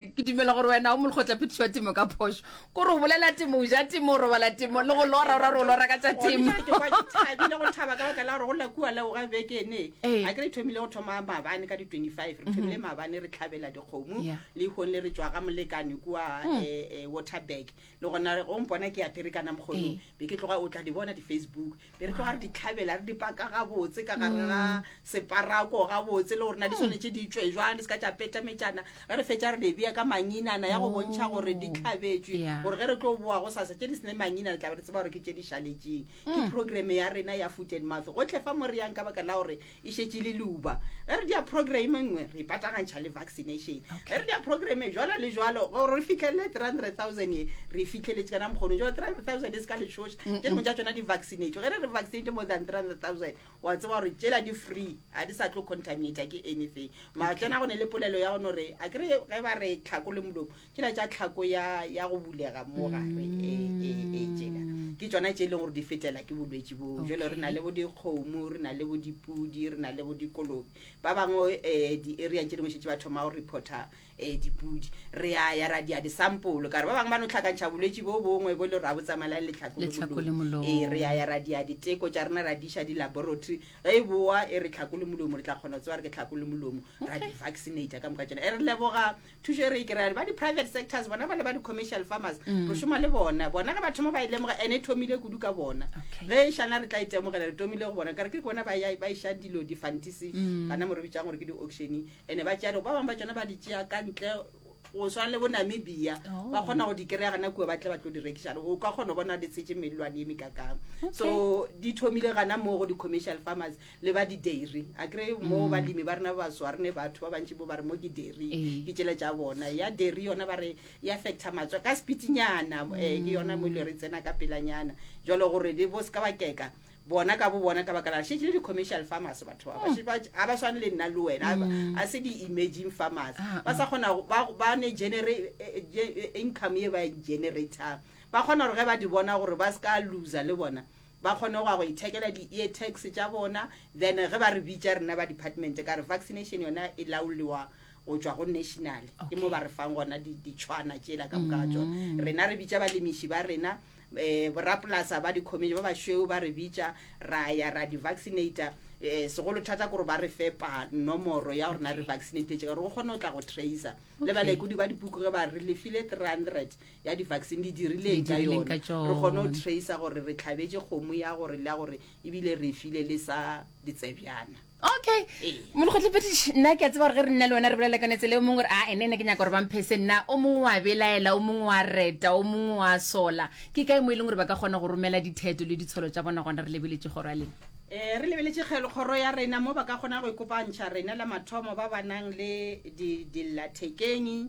ke dumela gore wena o molekgotla phetišo ya temo ka phošo ko re o bolela temo o ja temo o robala temo le go lora ora re o lora ka tša temo thabile go thaba ka baka la gore go lakua leo ga bekene ee. a ke re thomile go thoma mabane ka di-25 re thomile mhm. mabane re tlhabela dikgomo le ikgong le re tswa ga molekane kua hmm. eh, eh, waterburg le gona go mpona ke ya perekana mokgonong ee. be ke tloga o tla di bona di-facebook be re tloga re di tlhabela re di paka gabotse ka gare ga mm. separako gabotse le gorena di mm. tshwanetse di tswe jwang di se ka tša petametšana ge re fetša re di bea ka manginana ya go oh. bontšha gore di tlhabetswe gore ge re tlo boa go sasa tše di sene manginana tlabe re tseba gore ke tše di šaletseng ke mm. programme ya rena ya food and mouth gotlhe fa mo re yang ka baka la gore E šetše le luba. Ge re dia programe nngwe, re ipatagantšha le vaccination. Ge re dia programe jwalo le jwalo, gore re fihlelele 300,000 ye, re e fihlheletše ka na mokgono. Jwale 300,000 e se ka lešoša, tše dingwe tša tšona di vaccinate. Ge re re vaccinate more than 300,000, wa tseba gore tšela di free, ga di sa tlo contaminata ke anything. Mara tsena go ne le polelo ya go no re, a kere ge ba re tlhako le molomo, ke la tša tlhako ya ya go bulega mo gare e e e tšela ke tsona tše e leng gore di fetlela ke bolwetši boo jalo re na le bo dikgomo re na le bo dipudi re na le bo dikolobe ba bangwe um di-areang tše dingwe šetse ba thoma go reporta um dipudi re a ya ra dia disampolo ka re ba bangwe ba no tlhakantšha bolwetši bo bongwe bo le gore a bo tsamaelang letlhako le Letlhako le molomo. molomo. Ee, re ya ya ra dia diteko tša rena ra diša di-laboratory ge e boa e re tlhako le molomo re tla kgona go tsewa re ke tlhako le molomo ra di-vaccinata ka moka tšona e re leboga thušo e re e kry-a ba di-private sectors bona ba le ba di-commercial farmers mm. re šoma le bona bona ge batho mo ba e lemoga and e thomile kudu ka bona ge e šana re tla itemogela e re tomile go bona kare ke bona ba iša dilo di-fantisi mm. gana mo re bitsang gore ke di-auctioning and-e ba tšealo ba bangwe ba tsone ba di tšea ka ntle go swana le bo namibia oh. ba kgona go di kry-a gana kua ba tle ba tlo di rekišale o ka kgona go bona di tshetse melelwane e mekakang so di thomile gana moo go di-commercial farmers le ba di-dairy a kry mo balemi ba rena ba baso a rene batho ba bantši bo ba re mo ke dairy Ee. ke tšela tša bona ya dairy yona ba re e affecta matswa ka sepitinyana um ke yona mo e le re tsena ka pelanyana jalo gore le bo se ka ba keka bona ka bo bona ka baka la šetše le di-commercial farmers batho ba ba- ba ga ba swane le nna le wena a ba- a se di-emerging farmers Ah, ba sa kgona go- ba ba ne genera- eh, eh, ge- eh, income ye ba e generatang ba kgona gore ge ba di bona gore ba se ka loser le bona ba kgone go ya go ithekela di-ear tags tša bona then ge ba re bitša rena ba department ka re vaccination yona e laolewa go tšwa go national ke mo ba re fang gona ditšhwana tšela ka moka ga tsona mm. rena re bitša balemiši ba rena um eh, borapolasa ba dicommision ba bašweu ba re bitša ra ya ra di-vaccinator um eh, segolo thata kore ba re fepa nomoro ya gorena re vaccinatetse gore go kgone go tla go tracer le balekodi ba dipuku ge ba re lefile three hundred ya di-vaccine di dirileng ka yone re kgone go trace gore re tlhabetse kgomo ya gore le ya gore ebile re file le sa ditsebjana okay ee. molokgotlhepediši nna ke a tseba gore ge re nna le wena re bolela kane tsele o mongwe gore a ene ne ke nyaka gore bamphese nna o mongwe wa belaela o mongwe wa reta o mongwe wa sola ke kae mo e leng gore ba ka kgona go romela ditheto le ditsholo tsa bona gona re lebeletse kgoro ya lena um re lebeletse kgelo kgoro ya rena mo ba ka kgona go ikopantšha rena la mathomo ba ba nang le dillathekeng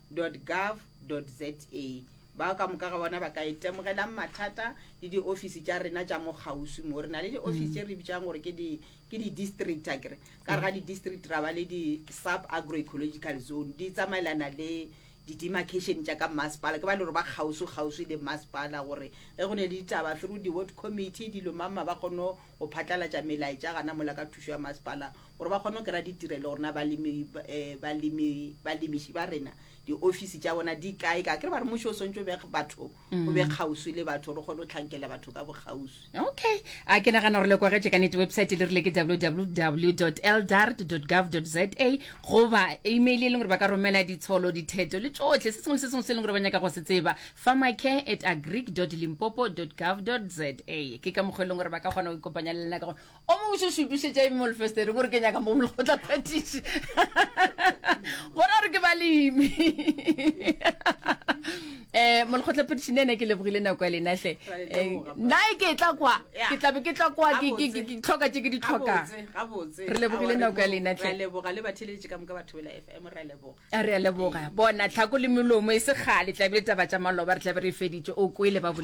www.gov.za bao ka moka ga bona ba ka itemogelang mathata le diofisi tša rena tša mo kgauswi mo re na le diofisi mm. tše re bitsang gore ke di-district a kere ka re ga mm. di-district ra ba le di-sub agroecological zone di tsamaelana le di-demarcation tša ka masepala ke ba le gore ba kgauswi kgauswi le masepala gore ge go ne le ditaba through di-word committee dilo mamma ba kgone go phatlalatša melaetša gana mola ka thušo ya masepala gore ba kgone go kry-a ditirelo gore na balemiši ba rena diofisi tša bona di kae ka kere ba re mmušo o swantse o be batho o mm. be kgauswi le batho gore o kgone go tlhankela batho ka bokgauswi okay a ke nagana gore le kwagetše ka nete website le rile ke www eldart gov za goba email e leng gore ba ka romela ditsholo ditheto le tsotlhe se sengwe le se sengwe se e leng gore ba nyaka go se tseba pharmacare at agric limpopo gov za ke ka mokgwa e leng gore ba ka kgona go ikopanya le lena ka gore o mo botse o se utlwisetša eng molfestere gore ke nyaka mo molekgotla phatiši gore a re ke balemi eh molekgotla phatiši ne ne ke lebogile nako ya lena hle Eh, nna e ke tla kwa ke tlabe ke tla kwa ke- ke- ke- ke tlhoka tše ke di tlhokang re lebogile nako ya lena hle leboga le batheletše ka moka batho bela f m ra leboga a re a leboga bona tlhako le melomo e se kgale tlabe le taba tša maloba re tlabe re e feditše o kwele ba boledi